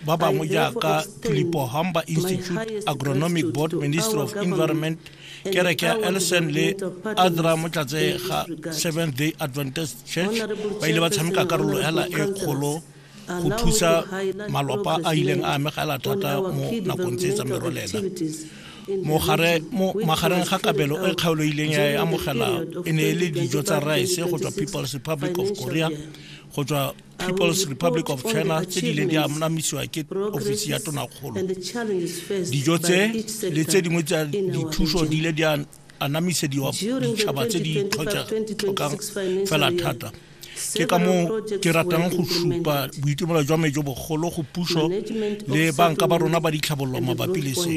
ba bangwe jaaka tulipo humber institute agronomic board ministry of environment kereke ya elson le adra motlatse ga seventh day adventist church ba ile ba tshameka karolo hela e kgolo go thusa malwapa a ileng a amegela thata mo nakong tse tsa merolela mogare mo magareng ga kabelo e kgaoloileng ya e amogela e ne e le dijo tsa rice go tswa people's republic of korea go tswa people's republic of china tse di le di anamisiwa ke ofisi ya tonakgolo dijo tse le tse dingwe tsa dithuso di ile di anamisediwa ditšhaba tse di tlhokang fela thata ke ka moo ke ratang go supa boitumelo jwa me jo bogolo go puso le banka ba rona ba ditlhabololo mabapi le se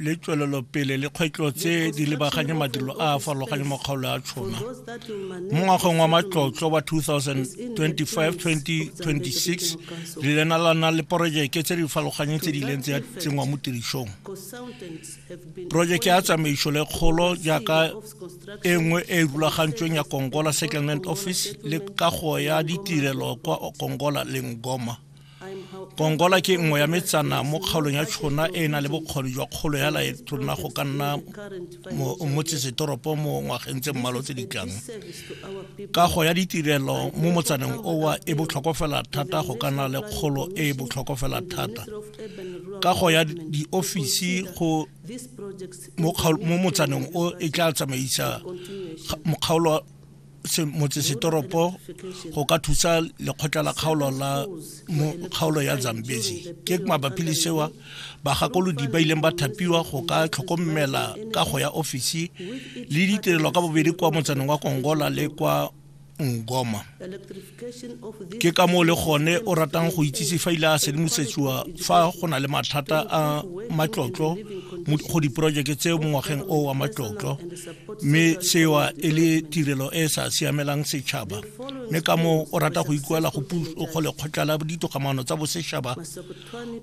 le tswelelopele le kgwetlo tse di lebaganye madilo a a farologanye mo kgaolo ya tshona mo ngwageng wa matlotlo wa 2025-2026 le lena la na le porojeke tse di farologanyeng tse di ileng tse ya tsenngwa mo tirisong porojeke ya tsamaiso le kgolo jaaka e nngwe e e rulagantsweng ya kongola settlement office le kago ya ditirelo kwa kongola le ngoma kongola ke nngwe ya metsana mo kgaolong ya tšhona e e nang le bokgoni jwa kgolo ya laetrona go ka nna motsesetoropo mo ngwageng tse mmalo tse di tlang kago ya ditirelo mo motsaneng owa e botlhokofela thata go ka nna le kgolo e e botlhokofela thata kago ya diofisi go mo motsaneng o e tla tsamaisa mokgaolo motsesetoropo go ka thusa lekgotla la kgaolo la kgaolo ya zambezi ke mabapi le sewa bagakolodi ba ileng ba thapiwa go ka tlhokomela ka go ya ofisi le ditirelo ka bobedi kwa motsaneng wa kongola le kwa ngoma ke ka moo le gone o ratang go itsise fa ile a sedimosetsiwa fa go na le mathata a matlotlo go diporojeke tse mo ngwageng o wa matlotlo mme sewa e le tirelo e e sa siamelang setšhaba mme ka moo o rata go ikuela go go lekgotla la ditogamaano tsa bosetšhaba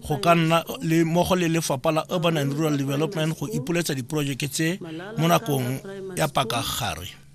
go ka nna le mmogo le lefapha la urban and rural development go ipoletsa diporojeke tse mo nakong ya pakagare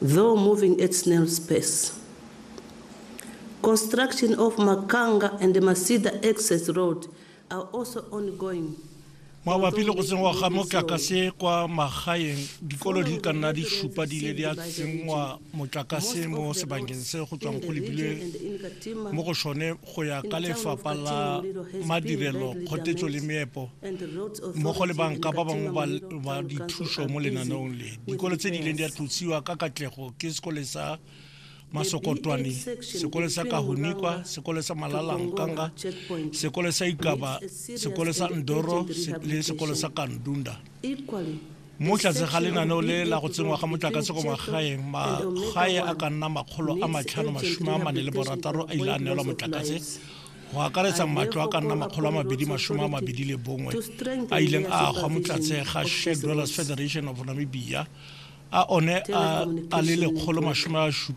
Though moving at snail's pace. Construction of Makanga and Masida access road are also ongoing. mabapi le go tsenngwa ga motlakase kwa magaeng dikolo di ka nna di supa di ile di a tsenngwa motlakase mo sebakeng se go tswang go lebilwe mo go sone go ya ka lefapha la madirelo kgotetso le meepo mmogo le banka ba bangwe ba dithuso mo lenaneong le dikolo tse di ileng di a tlotsiwa ka katlego ke sekole sa masokotwane sekole sa kahunikwa sekole sa malalankanga sekole sa ikaba sekole sa ndoro le sekole sa kandunda mo tlase ga lenaneo le la go tsenngwa ga motlakase kwa magaeng magae a ka nna makgolo a matlhano masome a mane le borataro a ile a neelwa motlakase go akaretsa matlo a ka nna makgolo a mabedi masome a mabedi le bongwe a ileng a agwa mo tlatse ga shared dwellers federation of namibia a one a le lekgolo masome a supa